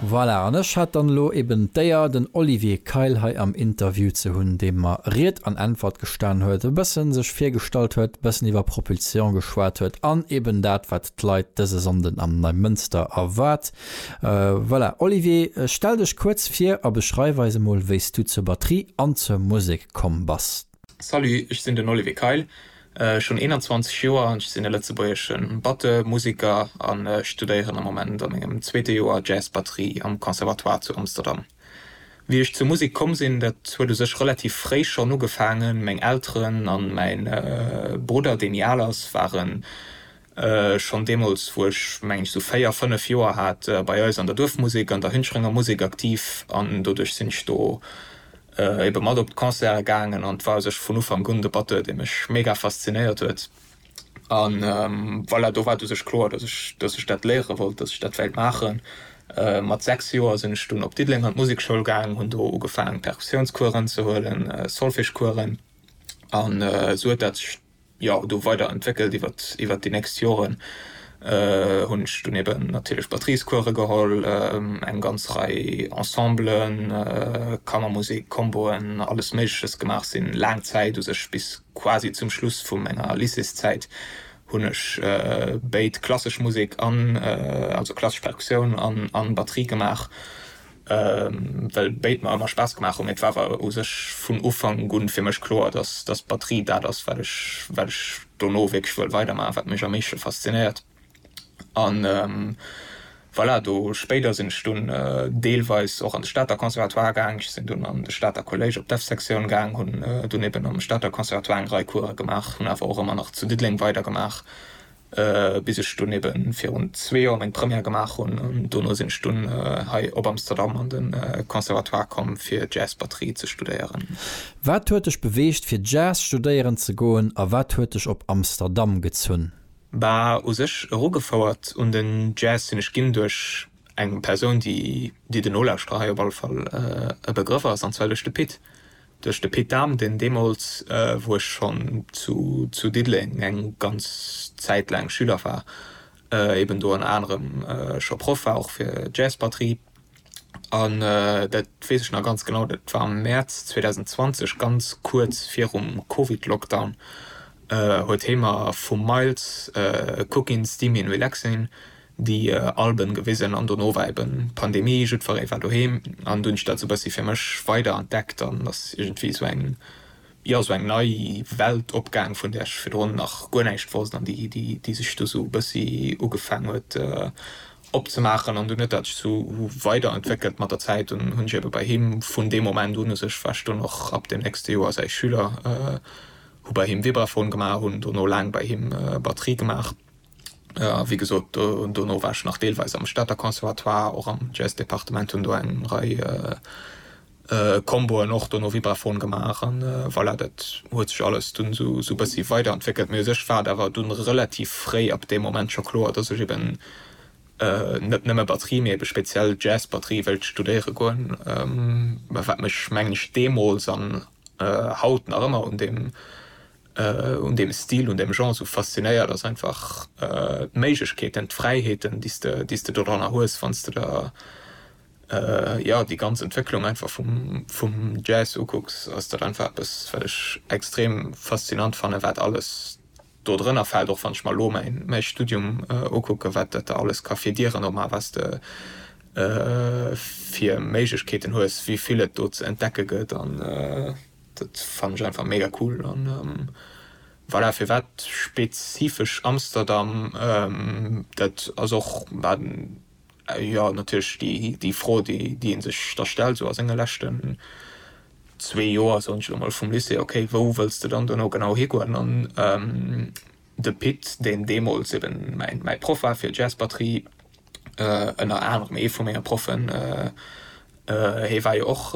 Voilà, an ech hat dann elo eben d'Éier, den Olivier Keil hei am Interview ze hunn, dee mer Ried an Äntwert gestan huet, e bëssen sech virgestallt huet, e bëssen iwwer Propulsion geschwat huet an eben dat, wat d'Leit dëse Sonnden am Neimënster erwaart. Voilà, Olivier, stell dech kuerz vir a beschreif eis emol, wéi s du zur Batterie an zur Musek komm bass. Salut, ech sinn den Olivier Keil, ech hunn 21 Joer an ech sinn e lëtzebuergesche Batteux, Museker a studéieren am Moment a mengem zweete Joer Jazz-Batterie am Conservatoire zu Amsterdam. Wéi ech zur Musek komm sinn, dat huet u sech relativ fréi schonn ugefaangen. Meng Elteren a mäi Brudder, deen méi al ass, ware schonn deemools, wou ech, mengen ech, sou véier, fënnef Joer hat, bei eis an der Duerfmusek, an der Hüncherenger Musek aktiv. An doduerch sinn ech do ebe mat op d'Concerte gaangen an et war u sech vun Ufank un de Batteur, dee mech mega faszinéiert huet. A voilà, do war et u sech kloer, datt ech, datt ech dat léiere wollt, datt ech dat wéilt maachen. Mat sechs Joer sinn ech dunn op Diddeleng an d'Musekschoul gaangen, hunn do ugefaangen, Perkussiounscoursen ze huelen, Solfège-Coursen, an esou huet dat sech, jo, do weider entwéckelt iwwert iwwert déi nächst Joren hunn ech dunn eben natierlech Batteriescourse geholl, eng ganz Rei Ensemblen, Kammermusek, Comboen, alles méigleches gemaach, sinn laang Zäit, u sech bis quasi zum Schluss vu menger Lycéeszäit hunn ech béid klassesch Musek an also klassesch Perkussioun an an Batterie gemaach well béid mer ëmmer Spaass gemaach hunn, mee et war awer u sech vun Ufank un fir mech kloer, dass dass Batterie dat ass, wat ech wat ech dono wierklech wëll weidermaachen, wat mech am meeschte faszinéiert. An voilà, do spéider sinn ech dunn deelweis och an de Stater Conservatoire gaang, ech sinn dunn an de Stater Collège op d'Dev-Sektioun gaang, hunn dunn eben am Stater Conservatoire eng Rei Course gemaach, hunn awer och ëmmer nach zu Diddeleng weidergemaach, bis ech dunn eben virun zwee Joer meng Première gemaach hunn an dono sinn ech dunn hei op Amsterdam an de Conservatoire komm fir Jazzbatterie ze studéieren. Wat huet dech beweegt fir Jazz studéieren ze goen a wat huet dech op Amsterdam gezunn? Bah u sech erugefouert un den Jazz sinn ech ginn duerch eng Persoun déi de Nolauschterer hei op alle Fall e Begrëff ass, an zwar duerch de Pit. Duerch de Pit Dahm, deen deemools, wou ech schonn zu Diddeleng eng ganz Zäit laang Schüler war, eben do ënner anerem scho Proff war, och fir Jazzbatterie. An dat weess ech nach ganz genau, dat war am Mäerz 2020, ganz kuerz virum Covid-Lockdown, huet hee mer vum Miles Cookin Steamin Relaxin déi Alben gewisen an dono war eben Pandemie, jiddferéen war doheem an do hunn ech dat sou bessi fir mech weider entdeckt an ass iergendwéi sou eng jo sou eng nei Welt opgaang vun där ech virdrun nach guer näischt wosst an déi déi déi sech do sou bessi ugefaang huet opzemaachen an dunn huet dat sech sou weider entwéckelt mat der Zäit an hunn ech eben bei him vun deem Moment un u sech war ech dunn och ab dem nächste Joer säi Schüler hu bei him Vibraphon gemaach hunn dono laang bei him Batterie gemaach. A wéi gesot, dono war ech nach deelweis am Stater Conservatoire, och am Jazz-Departement, hunn do eng Rei Comboen och dono Vibraphon gemaach. A voilà, dat huet sech alles dunn esou e bëssi weiderentwéckelt. Mee u sech war et awer dunn relativ fréi ab deem Moment scho kloer, dass ech eben net nëmme Batterie, mee ebe speziell Jazz-Batterie wéilt studéiere goen. Wat mech, mengen ech, deemools an haut nach ëmmer un deem un deem Stil, un deem Genre esou faszinéiert, ass einfach d'Méiglechkeeten, d'Fräiheeten, déi s de, déi s de doranner hues, wann s de der, jo, déi ganz Entwécklung einfach vum, vum Jazz ukucks, ass dat einfach eppes, wat ech extrem faszinant fannen, wat alles do drënner fält. Och wann ech mer elo mäin, mäi Studium ukucke, wat dat da alles ka fir Dieren opmaachen, wat s de fir Méiglechkeeten hues, wéi vill et do ze entdecke gëtt an, Dat fannen ech einfach mega cool an voilà firwat spezifesch Amsterdam? Dat ass och jo natierlech déi Fro déi een sech da stellt sou a senge leschten zwee Joer soen ech elo mol vum Lycée, ok wou wëlls de dann dono genau higoen an De Pit, deen deemools eben mäi Proff war fir Jazzbatterie, ënner anerem ee vu menge Proffen, hee war jo och,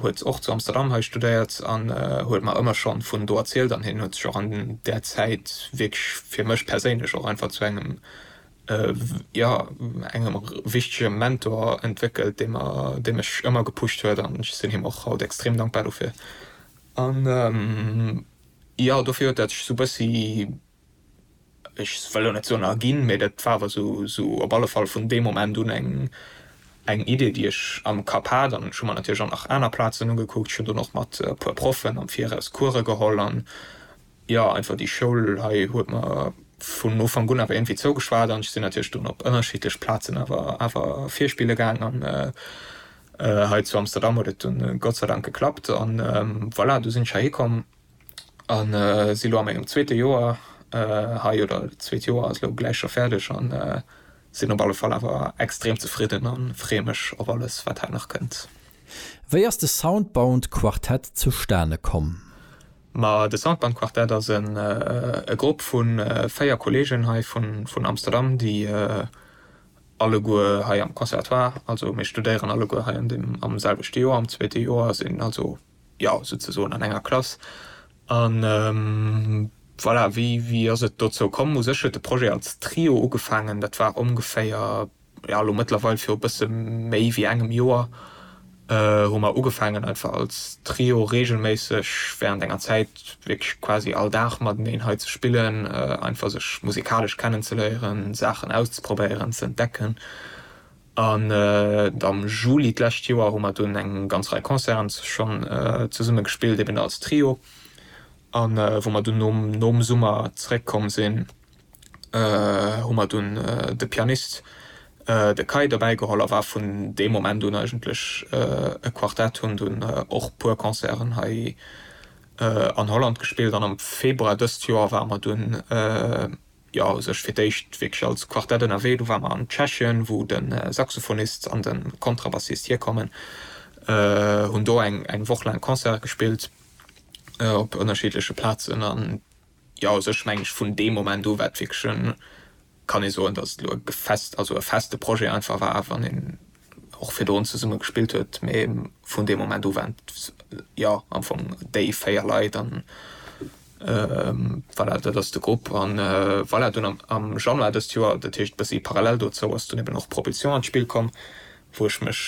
huet och zu Amsterdam hei studéiert an huet mer ëmmer schonn vun do erzielt an hien huet sech och an där Zäit wierklech fir mech perséinlech och einfach zu engem, jo, engem wichtege Mentor entwéckelt, dee mer, dee mech ëmmer gepusht huet an ech sinn him och haut extrem dankbar dofir an. Jo, dofir huet dat sech esou e bëssi, ech wëll elo net soen erginn, mee dat war awer esou op alle Fall vun deem Moment un eng Idee, déi ech am Kapp hat. An ech hu mer natierlech och nach aner Plazen ugekuckt. Ech hunn dunn och mat e puer Proffen am Viraus Course geholl. An jo, einfach déi Schoul hei huet mer vun Ufank un awer iergendwéi zougeschwat. An ech sinn natierlech dunn op ënnerschiddlech Plazen awer virspille gaangen. An Hei zu Amsterdam huet et dunn Gott sei Dank geklappt an voilà, du sinn ech heiheekomm a si lo a mengem zweete Joer hei, oder zweet Joer ass lo gläich scho fäerdeg a sinn op alle Fall awer extrem zefridden a freeë mech op alles, wat hei nach kënnt. Wéi ass de Soundbound Quartett zustane komm? Ma de Soundbound Quartett ass e Grupp vu véier Kolleegen hei vun Amsterdam, déi Alleguer hei am Conservatoire, also mir studéieren alleguer hei an dem am selwechte Joer, am zweete Joer, sinn also jo souzesoen an enger Klass an voilà. Wéi wéi ass et dozou komm? U sech huet de Projet als Trio ugefaangen, dat war ongeféier, jo elo mëttlerweil viru bësse méi wéi engem Joer, hu mer ugefaangen einfach als Trio reegelméisseg während enger Zäit wierklech quasi all Dag mateneen hei ze spillen, einfach sech musikalesch kennenzeléieren, Saachen auszprobéieren, ze entdecken. An am Juli d'lescht Joer hu mer dunn eng ganz Rei Concerten schonn zesumme gespillt, eben als Trio, a wou mer dunn nom Summer zeréckkomm sinn, hu mer dunn de Pianist, de Kai, dobäi geholl a war vun deem Moment un eigentlech e Quartett. Hunn dunn och puer Concerten hei an Holland gespillt an am Februar dëst Joer ware mer dunn jo u sech fir d'éischt wierklech als Quartett ënnerwee. Du ware mer an Tschechien, wou de Saxophonist an de Kontrabassist hierkommen, hunn do eng Woch laang Concerte gespillt op ënnerschiddleche Plazen an. Jo, also ech mengen, vun deem Moment u war et wierklech e, kann ee soen, datt et elo e gefest, also e feste Projet einfach war, wann een och virdrun zesumme gespillt huet, mee vun deem Moment u waren et, jo, am Fong déi véier Leit an voilà, dat ass de Grupp. A voilà, dunn am Januar dëst Joer, dat heescht e bëssi parallel dozou, ass dunn eben och Propulsion an d'Spill komm, wou ech mech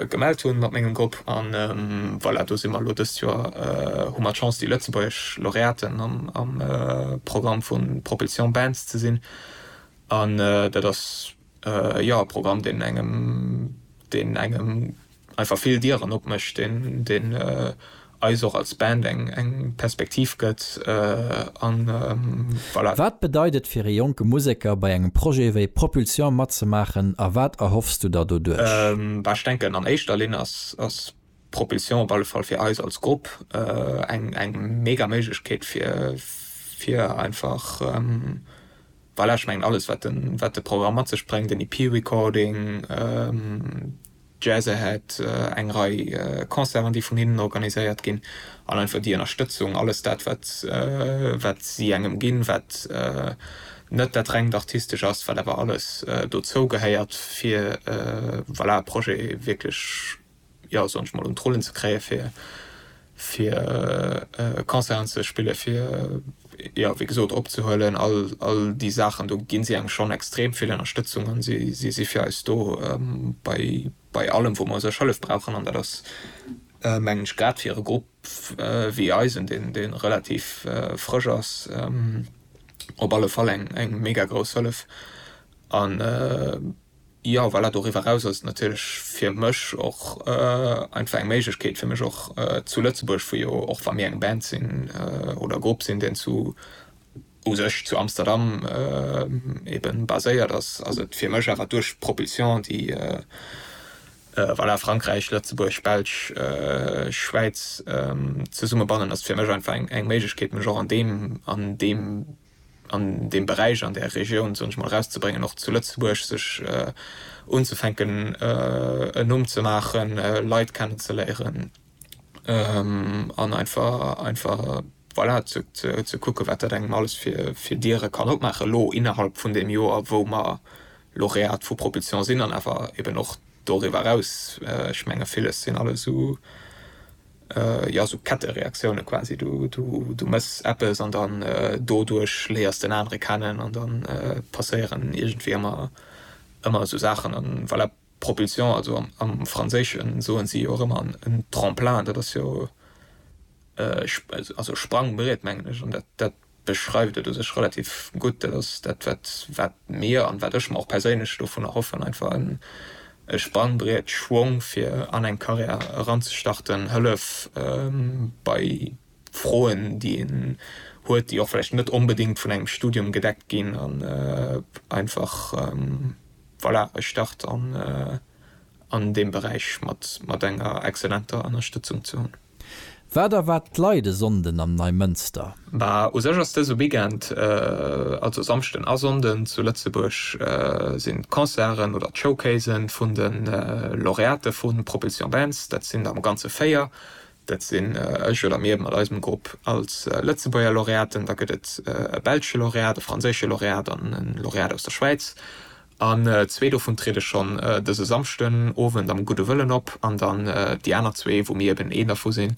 gemellt hunn mat mengem Grupp an voilà, do si mer elo. Dëst Joer hu mer d'Chance déi lëtzebuergesch Lauréaten am Programm vu Propulsion Bands ze sinn an dat ass jo e Programm deen engem deen engem einfach vill Dieren opmécht, deen eis och als Band eng eng Perspektiv gëtt an voilà. Wat bedeit et fir ee jonke Museker bei engem Projet wéi Propulsion matzemaachen a wat erhoffs du der doduerch? Bah ech denken an éischter Linn ass Propulsion op alle Fall fir eis als Grupp eng eng mega Méiglechkeet fir fir einfach voilà ech mengen alles wat de wat de Programm mat sech bréngt, den EP Recording, D'Jazze hätt eng Rei Concerten, déi vun hinnen organiséiert ginn, an einfach déi Ënnerstëtzung, alles dat, wat si engem ginn, wat net dat rengt Artistescht ass, wat awer alles dozou gehéiert, fir voilà e Projet wierklech, jo, soen ech mol, un d'Rullen ze kréien, fir fir Concerten ze spillen, fir, jo, wéi gesot, opzehuelen, all, all déi Saachen, do gi si engem schonn extrem vill Ënnerstëtzung an si, si si fir eis do bei, bei allem, wou mer u sech Hëllef brauchen. An dat ass, mengen ech, grad fir e Grupp wéi eisen, deen, deen relativ frësch ass, op alle Fall eng, eng mega grouss Hëllef an, Jo, voilà, doriwwer eraus ass et natierlech fir mech och einfach eng Méiglechkeet fir mech och zu Lëtzebuerg, vu jo och wa mir eng Band sinn oder e Grupp sinn deen zu u sech zu Amsterdam ebe baséiert ass, ass et fir mech awer duerch d'Propulsion déi voilà Frankräich, Lëtzebuerg, Belsch, Schwäiz zesummebannen, ass et fir mech einfach eng Méiglechkeet mech och an deem an deem an deem Beräich, an där Regioun, soen ech mol, erauszebréngen, och zu Lëtzebuerg sech unzefänken en Numm ze maachen, Leit kennenzeléieren an einfach, voilà, ze kucke wat dat engem alles fir Diere kann opmaachen elo innerhalb vun deem Joer, wou mer Lauréat vu Propulsion sinn an awer eeben och doriwwer eraus. Ech menge villes sinn alles esou jo sou Kettereaktioune quasi, du mëss eppes an dann doduerch léiers den anere kennen an dann passéieren iergendwéi ëmmer ëmmer sou Saachen an voilà Propulsion, also am Franséischen soen si jo och ëmmer un tremplin, dat ass jo e also Sprangbriet mengen ech an dat dat beschreift et u sech relativ gutt. Dat ass dat, wat wat mir an wat ech mer och perséinlech dovun erhoffen, einfach en e Sprangbriet, Schwong fir an eng Carrière eranzestarten, Hëllef bei Froen, déi een huet, déi och vläicht net onbedéngt vun engem Studium gedeckt ginn an einfach voilà e Start an an deem Beräich mat mat enger excellenter Ënnerstëtzung ze hunn. Wat erwaart d'Leit e Sonnden am Neimënster? Mä u sech ass dëse Weekend, also Samschden a Sonnden, zu Lëtzebuerg sinn d'Concerten oder d'Showcasen vun de Laureate vu Propulsion Dance. Dat sinn der am Ganze véier. Dat sinn ech oder mir mat eisem Grupp als Lëtzebuerger Laureaten. Da gëtt et e belsche Laureat, e franséische Laureat an e Laureat aus der Schwäiz. An zwee dovun triede schonn dëse Samschden Owend am Gudde Wëllen op an dann déi aner zwee, wou mir eben een dervu sinn,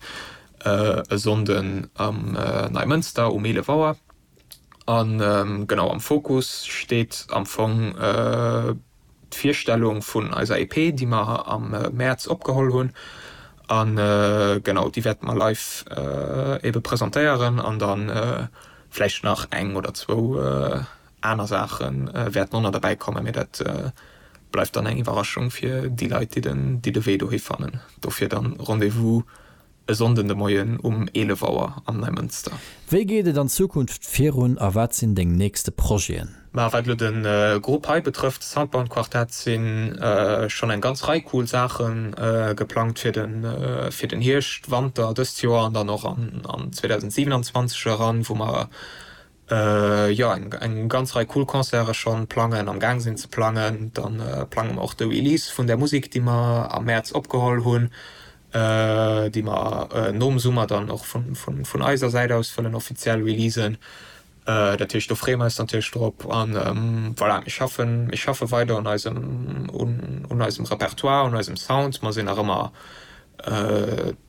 e Sonnden am Neimënster um 11 Auer. A genau, am Fokus steet am Fong d'Virstellung vun eiser EP, déi mer am Mäerz opgeholl hunn. A genau, déi wäerte mer live ebe presentéieren an da vläicht nach eng oder zwou. Aner Saache wäerten och nach derbäi kommen, mee dat bleift dann eng Iwwerraschung fir déi Leit, déi de Wee dohi fannen. Dofir dann Rendez-vous e Sonnden de Moien um 11 Auer am Neimënster. Wéi geet et an Zukunft virun a wat sinn deng nächste Projeten? Ma wat elo de Grupp hei betrëfft, Soundbound Quartet, si schonn eng ganz Rei cool Saache geplangt fir den Hierscht, Wanter dëst Joer an dann och an 2027 eran, wou mer Jo, eng ganz Rei cool Concerte schonn plangen, am gaang sinn ze plangen. Dann plange mer och de Release vun der Musek, déi mer am Mäerz opgeholl hunn, déi mer nom Summer dann och vun eiser Säit aus wëllen offiziell releasen. Dat heescht, do freeë mer eis natierlech drop. An voilà, mir schaffen, mir schaffe weider un eisem, un eisem Repertoire, un eisem Sound. Mer sinn nach ëmmer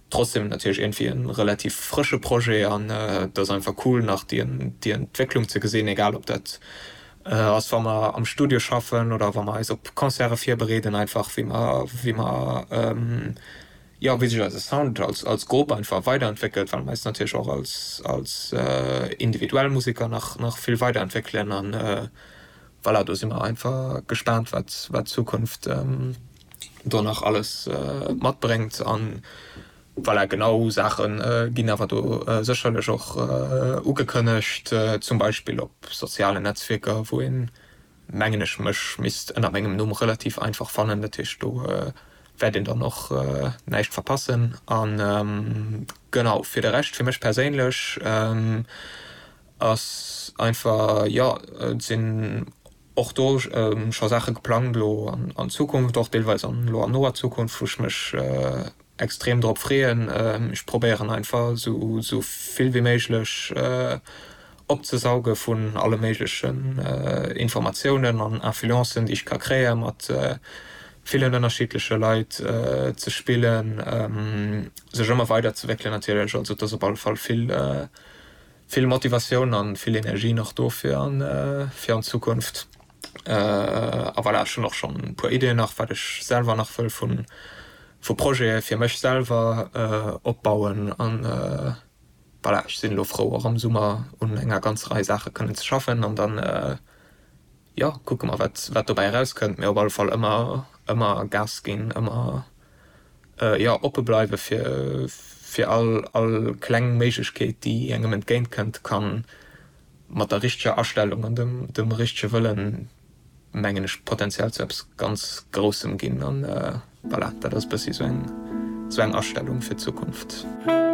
Trotzdem natierlech iergendwéi e relativ frësche Projet an et ass einfach cool nach déi Entwécklung ze gesinn, egal ob dat ass wa mer am Studio schaffen oder wa mer eis op Concerte virbereeden, einfach wéi mer, wéi mer, jo, wéi sech eise Sound als Grupp einfach weiderentwéckelt, well mer eis natierlech och als individuell Museker nach vill weiderentwéckelen. An voilà, do si mer einfach gespaant wat d'Zukunft. do nach alles matbréngt an voilà genau Saache ginn awer do sécherlech och ugekënnegt, zum Beispill op sozialen Netzwierker wou een mengen ech mech misst ënner mengem Numm relativ einfach fannen. Dat heescht do wäert een dann och näischt verpassen an genau fir de Rescht fir mech perséinlech ass einfach jo et sinn och do scho Saache geplangt elo an Zukunft, och deelweis an elo an noer Zukunft, wou ech mech extrem drop freeën. Ech probéieren einfach esou vill wéi méiglech opzesauge vun alle méiglechen Informatiounen an Influencen, déi ech ka kréien, mat villen ënnerschiddleche Leit ze spillen, sech ëmmer weiderzewéckelen natierlech. Also et ass op alle Fall vill Vill Motivatioun an vill Energie nach do fir an fir an Zukunft. A voilà, ech hunn och schonn e puer Ideen nach wat ech selwer nach wëll vun vu Projete fir mech selwer opbauen an voilà, ech sinn elo frou och am Summer un enger ganz Rei Saache kënnen ze schaffen an dann Jo, kucke mer wat wat dobäi erauskënnt, mee op alle Fall ëmmer ëmmer Gas ginn, ëmmer jo oppe bleiwe fir fir all all kleng Méiglechkeet déi engem entgéint kënnt, kann mat der richteger Astellung an dem dem richtege Wëllen mengen ech potenziell zu eppes ganz Groussem ginn an voilà, dat ass e bëssi esou eng esou eng Astellung fir d'Zukunft.